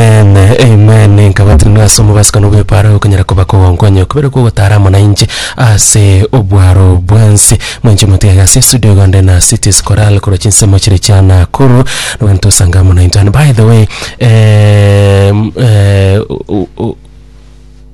Amen, amen. Nkabatirwe ase omobasika nobwepara okonyara koba kogonkwanyo kobere kogotara amo nainche ase obwaro bwensi. Mwenche motige gasi estudio igonde na Cities Chorale korwa chinsemo chire chia Nakuru. Nogento osanga amo nainto. And by the way, eh, mm, eh, u- u- u-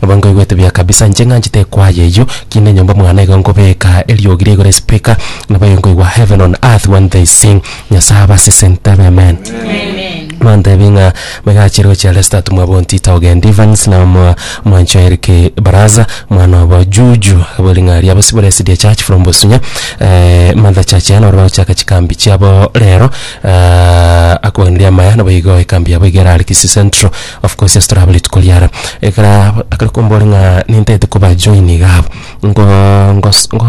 Nabo nkoigwete buya kabisa, inche ng'anchete ekwaya eyio, kina enyomba mwane igo nkobeka eriogi riaigoro espeaker, nabo aye nkoigwa heaven on earth when they sing, Nyasaye abasesente abe amen. Mantebie ng'a maiga achire gochia Leicester tumwa bontita ogenda Evans na mwa mwancho Eric Baraza mwana obo Juju abwo ring'aria abo sibore Esidia Church from Bosunya eh, Mother Church yane ore bagochaka chikambi chiabo rero eh, akobanirie amaya nabo igo ekambi yabo iga ere Kisi Central Of course yes torabwo rituko riaro. Ekero akare kombore ng'a nintaete koba join iga abwo, ngo ngos ngo.